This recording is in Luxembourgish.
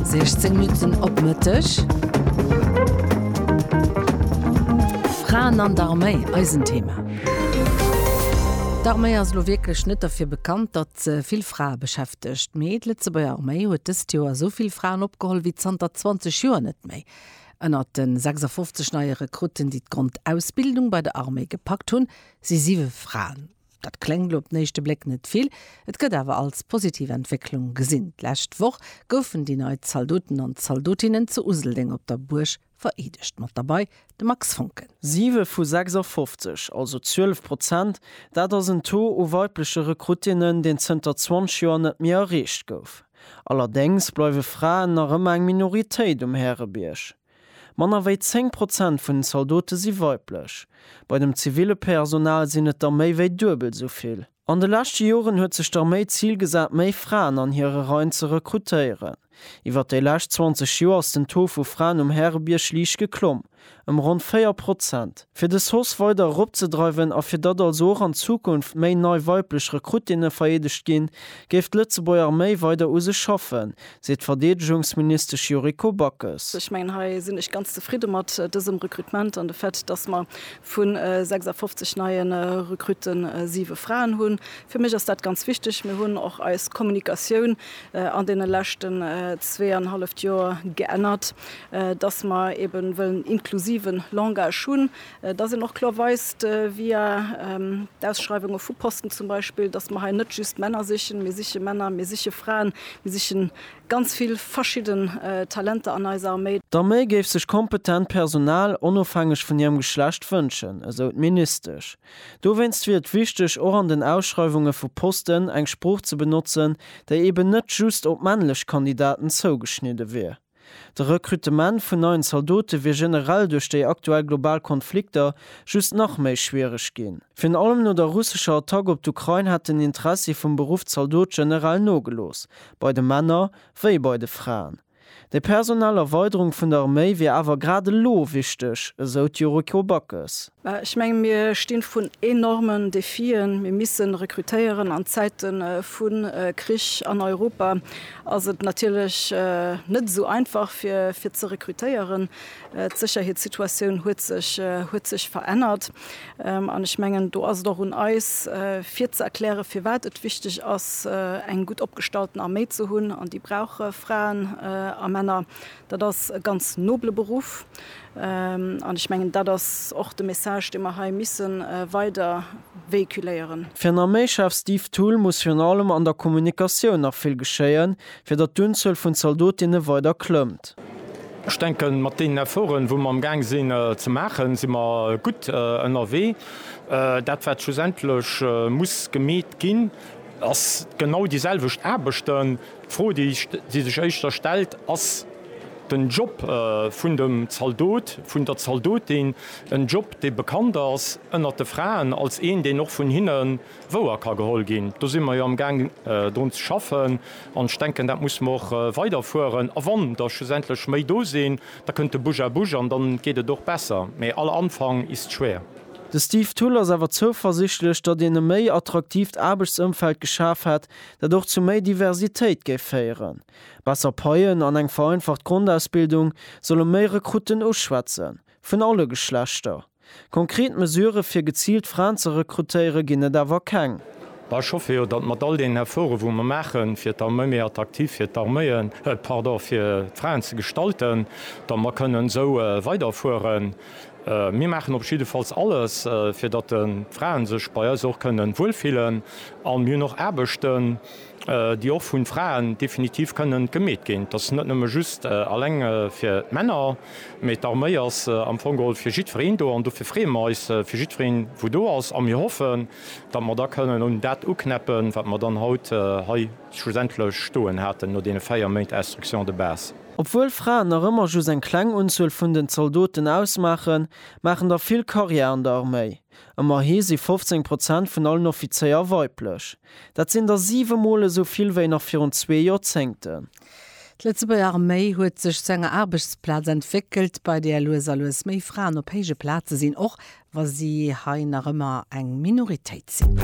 16 Minutten op Mëtteg. Fraen an der Arméi, eisen Thema. D'Arméi ass elo wierklech net derfir bekannt, datt se vill Frae beschäftegt. Mee d'Lëtzebuerger Arméi huet dëst Joer esou vill Fraen opgeholl wéi zanter 20 Joer net méi. Ënnert de 56 neie Rekrutten, déi d'Grondausbildung bei der Arméi gepackt hunn, si siwe Fraen. Dat kléngt op den éischte Bléck net vill, et gëtt awer als positiv Entwécklung gesinn. D'lescht Woch goufen déi nei Zaldoten an Zaldotinnen zu Useldeng op der Buerg vereedegt. Mat derbei de Max Foncken. Siwe vu 56, also 12 Prozent, dat ass en Taux u weibleche Rekruttinnen, deen zënter 20 Joer net méi erreecht gouf. Allerdéngs bleiwe Fraen nach ëmmer eng Minoritéit um Härebierg. Manner wéi 10 Prozent vun den Zaldote si weiblech. Bei dem ziville Personal sinn et der méi wéi duebel esou vill. An de leschte Joren huet sech d'Arméi d'Zil gesat, méi Fraen an hire Reien ze rekrutéieren. Iwwer déi lescht 20 Joer ass den Taux vu Fraen um Härebierg liicht geklomm, ëm ronn 4 Prozent. Fir de SOS weider eropzedreiwen a fir datt also och an Zukunft méi nei weiblech Rekrutinne vereedegt ginn, géif d'Lëtzebuerger Arméi weider u sech schaffen, seet d'Verdeedegungsministesch Yuriko Backes. Ech mengen, hei sinn ech ganz zefridde mat dësem Rekrutement an de Fait, dass mer vu 56 neie Rekrutte siwe Fraen hunn. Fir mech ass dat ganz wichteg. Mir hunn och eis Kommunikatioun an deene leschten zweeanhalleft Joer geännert, dass mer eebe wëllen inklusiven Langage hunn. dass een och kloer weist, via d'Ausschreiwunge vu Posten zum Beispill, dass mer hei net just Männer sichen, mir siche Männer, mir siche Fraen, mir siche ganz vill verschidden Talenter an eiser Arméi. D'Arméi géif sech kompetent Personal onofhängeg vun hirem Geschlecht wënschen, esou d'Ministesch. Dowéinst wier et wichteg, och an den Ausschreiwunge vu Posten eng Sprooch ze benotzen, déi eben net just op männlech Kandidaten zougeschnidde wier. De Rekrutement vun neien Zaldote wier generell duerch déi aktuell global Konflikter just nach méi schwiereg ginn. Virun allem no der russescher Attack op d'Ukrain hätt den Interessi vum Beruff Zaldot generell nogelooss, bei de Männer wéi bei de Fraen. Déi personell Erweiderung vun der Arméi wier awer grad elo wichteg, esou d'Yuriko Backes. Mä ech menge mir sti vrun enormen Defien. Mir missen rekrutéieren. An Zäite vu Krich an Europa ass et natierlech net esou einfach fir ze rekrutéieren. D'Sécherheetssituatioun huet sech verännert. An ech mengen do ass et och un eis fir ze erklären, firwat et wichteg ass eng gutt opgestallten Arméi ze hunn. An déi brauch Fraen a Männer. Dat ass e ganz nobele Beruff. An ech mengen, dat ass och de Message, dee mer hei misse weider véhiculéieren. Fir en Arméischef Steve Thull muss virun allem an der Kommunikatioun nach vill geschéien, fir datt d'Unzuel vun Zaldotinne weider klëmmt. Ech denken, mat deenen Efforten, wou mer amgaang sinn ze maachen, si mer gutt ënnerwee. Dat, wat schlussendlech muss gemeet ginn, ass genau déiselwecht Aarbechten, D'Fro, déi sech éischter stellt, ass den Job vun dem Zaldot, vun der Zaldotin, en Job, dee bekannt ass ënnert de Fraen als een, deen och vun hinne wouer ka geholl ginn. Do si mer jo amgaang drun ze schaffen, an ech denken, dat musse mer och weiderfueren. A wann der schlussendlech méi do sinn, da kënnt de Bouche à bouche an dann geet et och besser, mä aller Anfang ist schwer. De Steve Thull ass awer zouversichtlech, datt een e méi attraktiivt Aarbechtsëmfeld geschaf hätt, dat och zu méi Diversitéit géif féieren. Besser Paien an eng vereinfacht Grondausbildung solle méi Rekrutten uschwätzen, vun alle Geschlechter. Konkret Mesurë fir geziilt Fraen ze rekrutéiere ginn et awer keng. Ech hoffe jo, datt mat all deenen Efforte wou mer maache fir d'Arméi méi attraktiv fir d'Arméien, pardon, fir d'Fraen ze gestalten, datt mer kënnen esou weiderfueren. Mir maachen op jiddefalls alles, fir datt de Frae sech bei eis och kënnen wuel fillen. A mir hunn och Aarbechten, déi och vun Fraen definitiv kënnen gemeet ginn. Dat ass net nëmme just eleng fir d'Männer, mee d'Arméi ass am Fong geholl fir jiddwereen do. An dofir freeë mer eis fir jiddwereen, wou do ass. A mir hoffen, datt mer da kënnen un dat uknäppen, wat mer dann haut hei. Schlussendlech stoen haten no deene 4 Méint Instruction de base. Obwuel Fraen nach ëmmer just eng kleng Unzuel vun den Zaldoten ausmaachen, maachen der vill Karriär an der Arméi. Ëmmerhi si 15 Prozent vun allen Offizéier weiblech. Dat sinn der 7 Mol esou vill wéi nach virun zwee Joerzéngten. D'Lëtzebuerger Arméi huet sech zu enger Aarbechtsplaz entwéckelt, bei där lues a lues méi Fraen op héije Plaze sinn, och wa si hei nach ëmmer eng Minoritéit sinn.